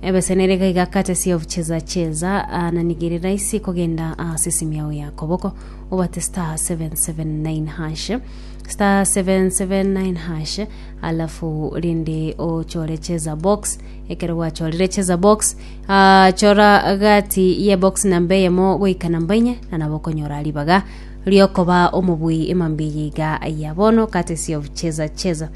Ebesenere iga iga courtesy of cheza cheza ananigere raisi kogenda ase simu yao ya koboko obate star 779 hash star 779 hash alafu rende ochore cheza box ekero gwachorire cheza box ah, chora gati ye box namba eyemo goika namba inye na nabo okonyora ribaga riokoba omobui emambia iga ya bono courtesy of cheza cheza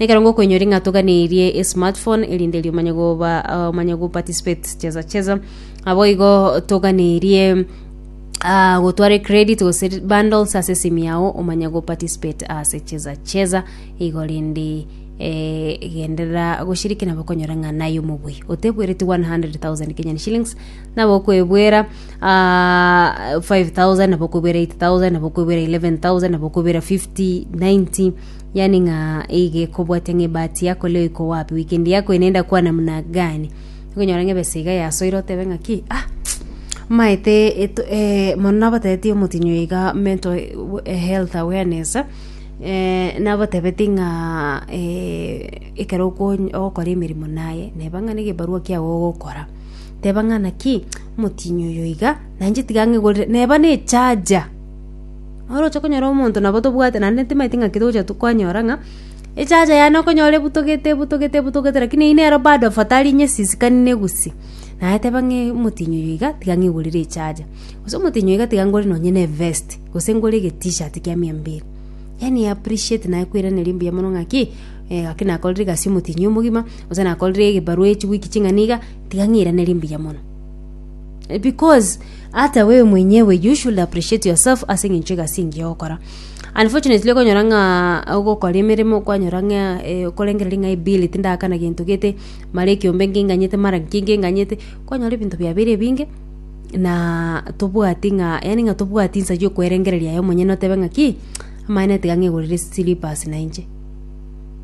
Nekero ngokoinyora ng'a toganeirie esmartphone erinde eri omanye goba ah, omanye go participate cheza cheza abo igo toganeirie ah, gotware credit gose bundles ase esimi yao omanye go participate ase cheza cheza igo rende eh, genderera goshiriki nabo okonyora ng'a naye omobui otebwereti 100,000 Kenyan shillings nabo okwebwera ah, 5,000 nabo okwebwera 8,000 nabo okwebwera 11,000 nabo okwebwera 50 90 Yaani ng'a iga ekobwatia ng'a ebahati yako leo iko wapi, weekend yako eye nenda kuwa namna gani. Okonyora ng'a ebesa iga yasoire otebe ng'aki ah maete eto eh, mono nabatebetie omotinyi oyo iga mental eh, health awareness eh, nabatebetie ng'a eh, ekero okony- ogokora emeremo naye neba ng'a negebarua kiago ogokora teba ng'a naki omotinyi oyo iga nainche tiga ng'egorere neba nechaja. Oroche konyora omonto nabo tobwate naende timanyeti ng'aki togocha kwanyora ng'a echacha yane okonyora ebutogete ebutogete ebutogete lakini eyio nero bado afadhali nyesisikani na egusi naye teba ng'a omotinyi oyo iga tiga ng'igorere echacha gose omotinyi oyo iga tiga ngore nonye na evesti gose ngore egetishati kia miambere yaani e appreciate naye kweraneria mbuya mono ng'aki ng'aki nakorire egasi omotinyi omogima gose nakorire egebarua echiwiki ching'ana iga tiga ng'iranerie mbuya mono. Because ata we mwenyewe you should appreciate yourself ase eng'encho egasi engiya ogokora. Unfortunately okonyora ng'a ogokora emeremo kwanyora ng'a eh, okorengereria ng'a ebill tindakana gento gete, mara ekiombe nkinganyete, mara nki nkinganyete, kwanyora ebinto biabeire ebinge na tobwati ng'a yaani ng'a tobwati nsa ya okwerengereria aye omonyene otebe ng'aki, amaene tiga ng'egorere slippers nainche.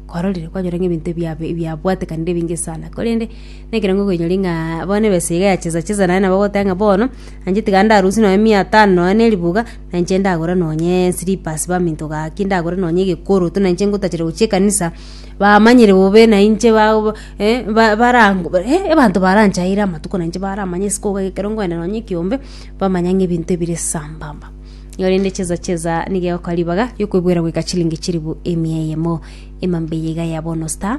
Kwarorire? Kwanyora ng'a ebinto ebiabe ebiabwatekanire ebinge sana korende. Nekerango koinyori ng'a bono ebesa iga ya chesa chesa naye nabo ogoteba ng'a bono nainche tiga ndarusie nonye mia tano nonye na eribuga nainche ndagore nonye slippers baminto gaki ndagore nonye egekoroto nainche ngotachera gochia ekanisa bamanyire bobe nainche ba ba eh ba barango bare eh abanto baranchaire amatuko nainche baramanye isiko iga ekero nkoenda nonye ekiombe bamanya ng'a ebinto ebire sambamba. Igo rende chesa chesa nigo egoka ribaga riokoebwera goika chilingi chilifu emia eyemo emambe eye iga ya bono star.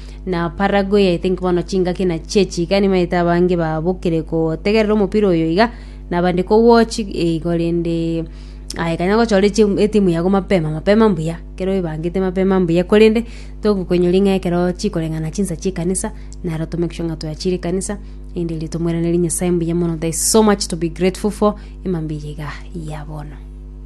na Paraguay I think bono chingaki na chie chiga nimaete abange babokire kotegerera omopira oyo iga na abande ko watch eh, igo rende aye kanya gochora echi- etimu yago mapema mapema mbuya ekero oebangete mapema mbuya korende togokoinyori ng'a ekero chikoreng'ana chinsa chie ekanisa naro to make sure ng'a twachire ekanisa erinde riria tomoiranerie Nyasaye mbuya mono there is so much to be grateful for emambia eye iga ya bono.